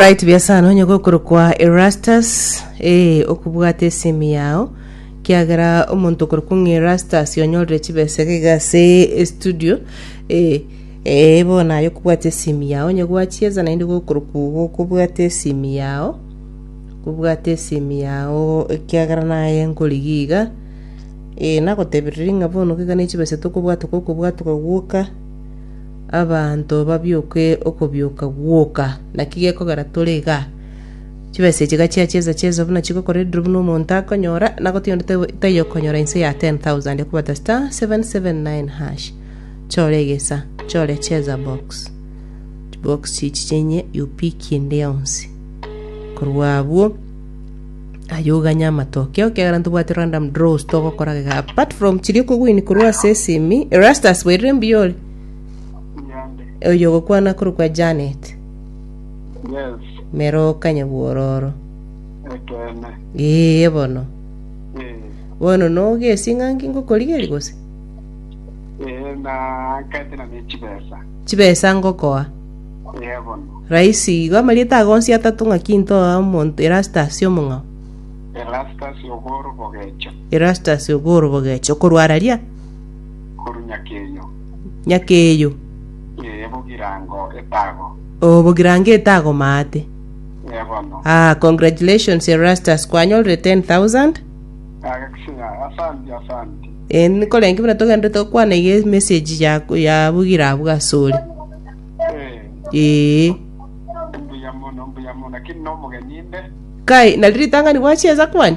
Right biasana onye gokorokwa Erastus eh okobwata esemi yao kiagera omonto okorokwa ng'a Erastus onyorire chibesa iga iga ase estudio eh eh bono aye okobwata esemi yao onye gwachiesa naende gokorokwa igo okobwata esemi yao kobwata esemi yao ekiagera naye nkorigia iga eh nagotebirie ng'a bono iga ne chibesa tokobwata okobwatoka gwoka Abanto babioke okobioka gwoka. Naki gekogera tore igaa? Chibesa echi iga chia chiesa chiesa buna chigokora ediiro buna omonto akonyora, na goti onde tai- taiyo okonyora inse ya 10,000 okobata *779#. Chore egesa, chore cheza box. Chibox chichi chinye you pick ende yonsi. Korwa abwo, aye oganye amatoke oo ekiagera ntobwati random draws togokora igaa. Apart from chiria okogwini korwa ase esimi, Erastus bweirire mbuya ore. Nyande. Oyo ogokwana korokwa Janet. Yes. Meroka nyabwororo. Ekeene. Ee bono. Ee. Bono noge esing'angi ngokorigeri gose? Ee na ketera ne chibesa. Chibesa ngokoa. Ee bono. Raisi igo amarieta ago onsi atato ng'aki ntoa omonto Erastus omong'ao. Erastus ogoro bogecho. Erastus ogoro bogecho okorwararia? korwa nyakeyo. Nyakeyo. Ee, bogirango etago. Oo, bogirango etago maate. Ee, bono. Ah, congratulations Erastus, kwanyorire 10,000. Agakisinya, asanti, asanti. Eh, nikorenge buna togendete gokwana iga emessage ya, ya bogira abwo ase ore. Ee, Ee, mbuya mono, mbuya mono, lakini nomogeni inde. kai, nari ritang'ani gwachiesa kwani?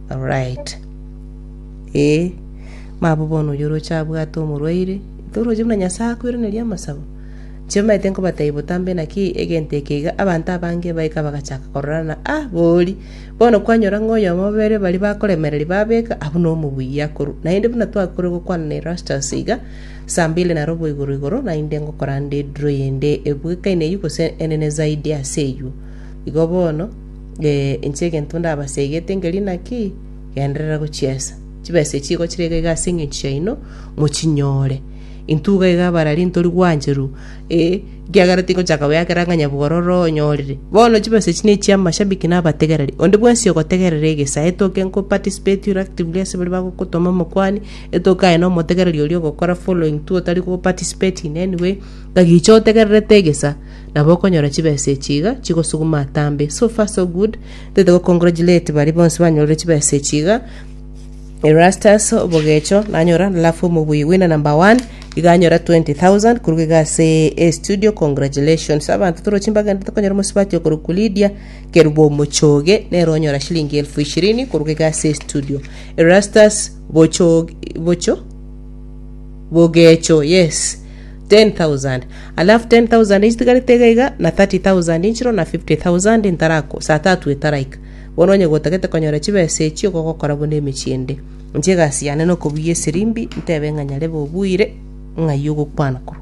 Alright ee mabo bono oyo oroche abwate omorwaire toroche buna nyasae akoiraneria amasabo inche manyete nkobatebi botambe naki egento eke iga abanto abange baika bagachaka kororana ah bori bono kwanyora ng'a oyomo babere bari bakoremereria babeka abwo no omobuya akoru naende buna twakore gokwana na erastus iga saa mbili na robo igoro igoro naende ngokora nde draw ende ebuekaine eywo gose enene zaidi ase eywo igo bono Inche egento ndabasegete nkeri naki, genderera gochiesa. Chibesa echi igo chire iga iga ase eng'encho yaino, mochinyore. Intwe iga iga abarari ntori gwancheru, eh, ekiagera tingochaka goyakera ng'a nyabogoro ororo onyorire. Bono chibesa echi ne chia amashabiki na abategereri. Onde bwensi ogotegerera egesa, etoke nko participate ore actively ase baria bagokotoma omokuani, etoke aye na omotegereri oria ogokora following too otari ko participate in any way, ng'a gicha otegererete egesa. Nabo okonyora chibesa echi iga chigosuguma atambe. So far so good, toite go congratulate baria bonsi banyorire chibesa echi iga. Erastus Obogecho nanyora alafu omobui winner number one iga anyora 20000 koruga iga ase estudio congratulations abanto toro chimbaga ende tokonyora omosubati okorokwa Lydia Kerubo Omochoge nere onyora shilingi elfu ishirini koruga iga ase estudio Erastus Bocho Bocho Bogecho yes 10,000 alafu 10,000 echitigarete iga iga na 30,000 inchiro na 50,000 intarako saa tatu etaraika bono onye gotagete konyora chibesa echi igo gokora buna emechie ende inche egasi yane nokobuya esirimbi ntebe ng'a nyarebe obuire ng'ai ogokwana korwa